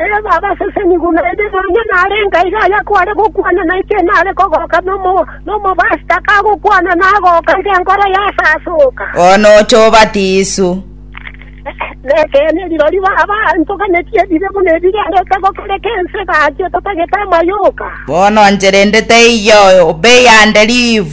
Erio babaseseni buna ere nonya narenge aiga aya kware gokwana nainche nare kogoka nomobastaka agokwana nagoka iga enkoro yasasoka. Bono oche obate Yeso. Nekeene eriro riba abanto ganeti ebibe buna ebirengeto gokareka ense egachia etatagete amayoka. Bono enchera ende teiyo, obe eyande live.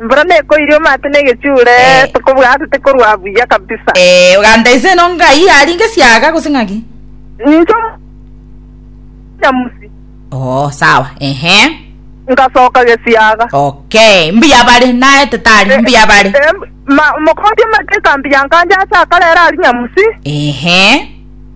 Embura nekoiria omate negechuure Eh. tokobua ase tekorua buya kabisa. Eh, oganta inse eno ngai yaringa esiaga gose ng'aki? Ninche nyamusi Oh, sawa. Ehe. ngasoka gesiaga. Okay. Mbuya bare naete tari mbuya bare. Em- ma- Mokondi omate ekambi yankancha ase akarere ari nyamusi. Ehe.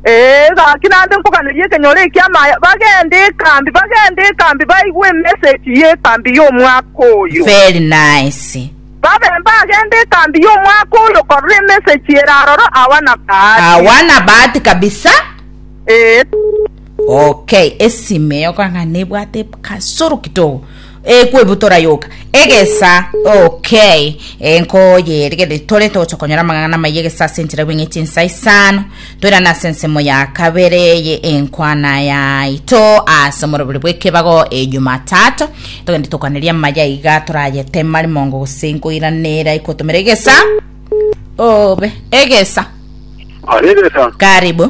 Ee, gaki naende nkoganerie ekenyoro eki'amaye, bagende ekambi, bagende ekambi, baigwe emesegi y'ekambi y'omwaka oyo. Very nice. Babe mbagende ekambi y'omwaka oyo korora emesegi ere aroro, awa na bahati. Awa na bahati kabisa. Ee. Okay, esime yokang'ana ebwate kasoro kidogo. Ee kwebutora yoka egesa okay ee nkoyeri gete tore togocha konyora amang'ana amaya egesa ase enchera bweng'etie ensa isano toirane ase ensemo ya kabere ye enkwana yaito ase omorobori bw'ekebago e Jumatatu togende tokwaneria amaya iga torayetema rimongo gose nkoiranera ikotomera egesa obe egesa Aregesa karibu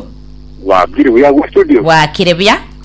wabiri buya gwa studio bwakire buya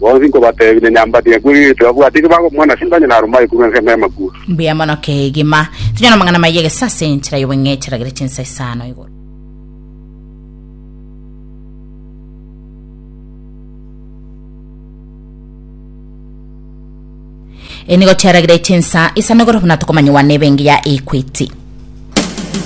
Bonsi nkobateebia, nonya mbati ngakure nigo tibabwati ekio bakomwana, ase intanyene aro mbaekurwa ense emeremo ekure. Mbuya mono kegima. Tonya namang'ana maya egesa ase enchera y'obong'echi aragere chinsa isano igoro. Eyi nigo chiaragire chinsa isano igoro buna tokomanyewa nebe engiya ya Equity.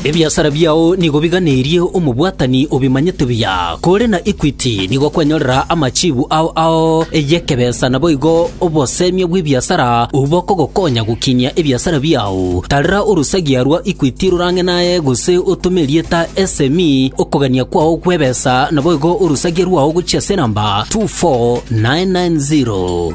Ebiasara biao nigo biganerie omobwatani obimanyete buya. Kore na Equity nigo kwenyorera amachibu ao ao y'ekebesa naboigo obosemia bw'ebiasara obwo bokogokonya gokinyia ebiasara biao. Tarera orosagia rwa Equity rorang'e naye gose otome erieta SME okogania kwao gw'ebesa naboigo orosagia rwao gochia ase enamba 24990.